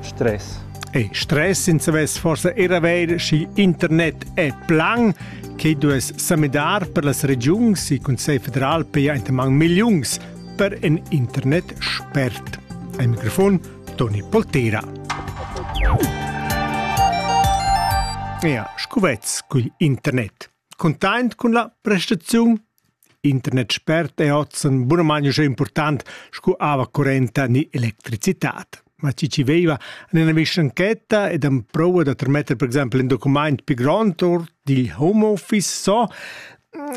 Stress. E stress senza vess forsa era ver schi internet è plan che dues samidar per las regiuns e Consell federal pia entamang milliuns per en internet spert. Ein mikrofon Toni Poltera. Ja, scuvez cugl internet. Containt cun la prestaziun Internet spert è ozen bunamain uschè impurtant sco aua currenta ni electricitad. Ma chi chi veiva en ina vischanchetta ed am prova da trametter per exempel in documaint pi grond or digl home office so,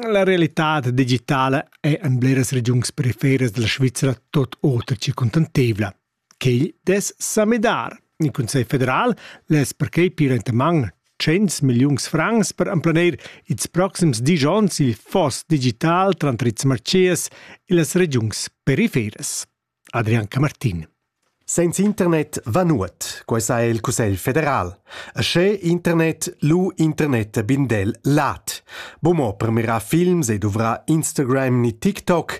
la realitad digitala è en bleras regiuns periferas dalla Svizra tot oter che contantevla. Quei dess sa midar. Il Cussegl federal less perquei pir entaman 100 milliuns francs per emplanir ils proxims dis onns il foss digital tranter ils marchés e las regiuns periferas. Adrian Camartin. Senza internet va nuot, quai sa il Cussegl federal. E sche internet lu internet bindel lat. Bomo premierà films e dovrà Instagram ni TikTok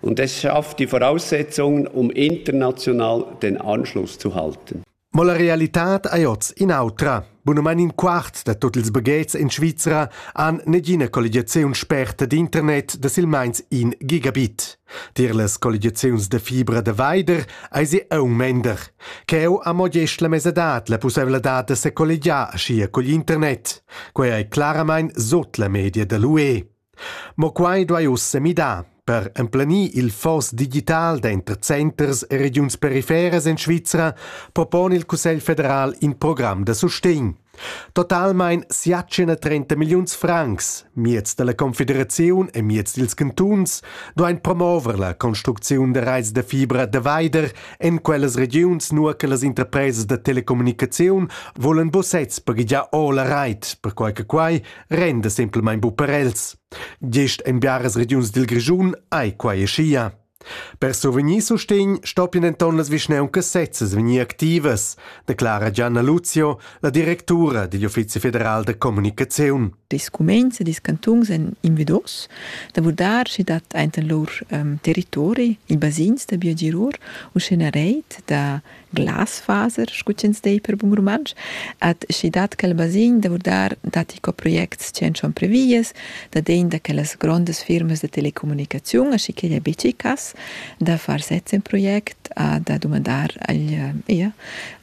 Und es schafft die Voraussetzungen, um international den Anschluss zu halten. Ma la realitad ei oz in'autra. Bunumein in quart da tut ils baghetgs in Svizra han negina colligiaziun sperta d'internet da silmeins in gigabit. Tier las colligiaziuns da fibra da veider eisi aung mender. Cheu ha mo gest la mesadad la pusseivladad da secolligiar aschia cugl internet. Quei ei claramein sut la media da l'UE. Mo quai duai ussa midar per emplenir il foss digital denter centers e regiuns periferas en Svizra propona il Cussegl federal in program da sustegn. Totalmein siatschena 30 milliuns francs, miez dalla confederaziun e miez dils cantuns, duein promover la construcziun da reis da fibra da veider en quellas regiuns, nur che las interpresas da telecommunicaziun volen bussets paghigiar o la reit, perquai che quai renda semplamain bu per els. Gest en biaras regiuns dil Grischun ei quai schia. Per survegnir sustegn stoppien denton las vischnauncas sezzas vegnir activas, declara Gianna Luzio, la directura digl Uffizi federal da comunicaziun. Ils cuminds e ils cantuns èn invidos da vurdar sch'i dat enten lur um, territori ils basins da biogirur u sch'ina reit da Glasfaser, scu ch'ins dei per bun rumantsch, at schi dat quel basign da vurdar datti co projects chi en son previas, da degn da quellas grondas firmas da telecommunicaziun, aschicheglia bici cass, da far sez in project a da dumandar agl, ia,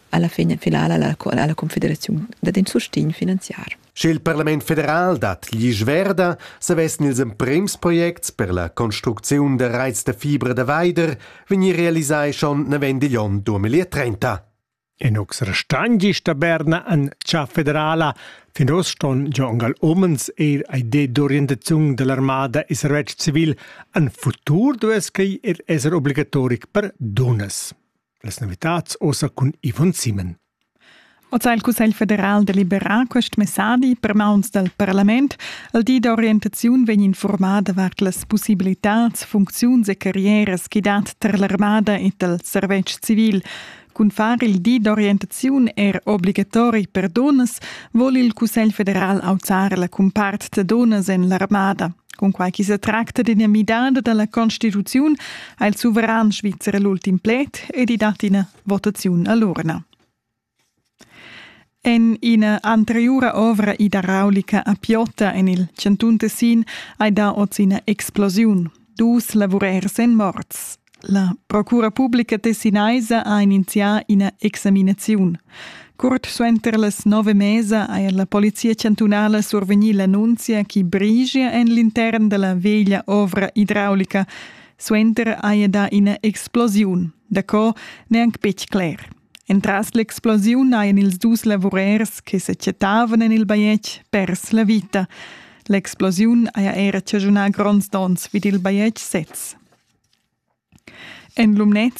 alla fin finala alla, alla confederaziun dad in sustign finanziar. Sche il parlament federal dat glisch verda, savessan ils emprems projects per la construcziun da raits da fibra da veider vegnir realisai schon navend igl onn 2030. Inux restan gist a Berna an cha federala. Fin oz ston già angal omens eir a idea d'orientaziun dell'armada e servetsch civil. An futur duess quei er esser obligatoric per dunas. Las novitads ossa cun Yvonne Simon. Oz ha il Cussegl federal deliberà quest messadi per mauns dal parlament. Il di d'orientaziun vegn informar davart las possibilitads, funcziuns e carrieras che dat tar l'armada e dal servetsch civil. Cun far il di d'orientaziun er obligatori per dunnas vogl il Cussegl federal auzar la cumpart da dunnas en l'armada. Cunquai ch'i sa tracta d'ina midada da la constituziun ha il suveran svizzer l'ultim pled ed i dat ina votaziun a l'urna. En ina anteriura ovra idraulica a Piota en il chantun Tessin hai dà oz ina explosiun. Dus lavurers èn morts. La Procura publica tessinaisa ha inizià ina examinaziun. Curt suenter las nove mesa ha la polizia chantunala survegnì l'annunzia che brigia en l'intern da la veglia ovra idraulica. Suenter haja dà ina explosiun. Daco n'è anc betg cler. Entras l'explosiun hajan ils dus lavurers che sa chattavan en il bajetg pers la vita. L'explosiun haja era chaschunà gronds donns vid il bajetg sez. En Lumnez